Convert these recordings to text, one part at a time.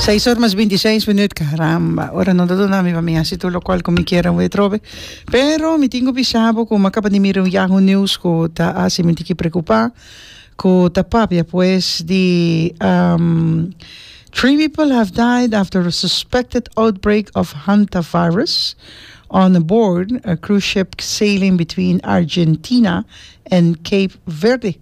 Seis or mas binti seis minuut, caramba, ora no ta duna mi pa mi hasi tur lokual ku mi kier awe atrobe. Pero mi tin ku bisa bo ku mi a kaba di mira un Yahoo News ku ta hasi mi tiki preokupá, ku ta papia pues di Three people have died after a suspected outbreak of hantavirus on a board a cruise ship sailing between Argentina and Cape Verde.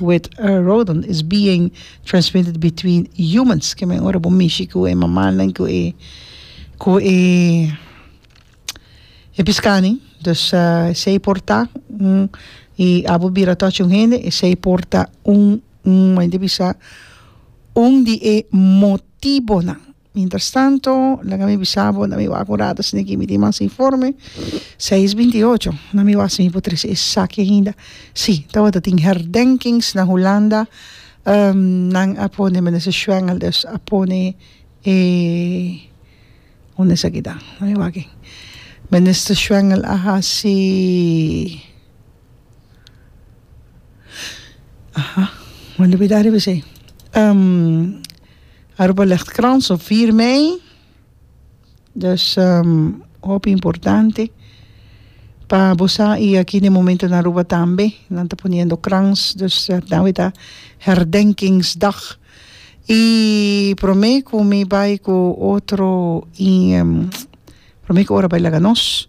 With a rodent is being transmitted between humans, ke men ora bo mishi ku e mamanan ku e ku e e piskani, dus esei por ta un i abo bira touch un hende esei por ta un un mende bisa un di e motibonan. Mientras tanto, laga mi bisa bo, na mi wak un rato asina aki mi tin mas informe, seis binti i ocho, na mi wak si mi por trese esaki ainda, si, tabata tin herdenkings na Hulanda, nan a pone Minister Schwengel dus a pone e, un esaki ta? Na mi wak aki, Minister Schwengel a hasi. Aha, me olbida riba esei. Aruba Luchtkrans op vier mei, dus hopi importante pa bo sa i aki den momento na Aruba tambe nan ta poniendo krans, dus tambe ta herdenkingsdag. I prome ku mi bai ku otro i prome ku ora bai laga nos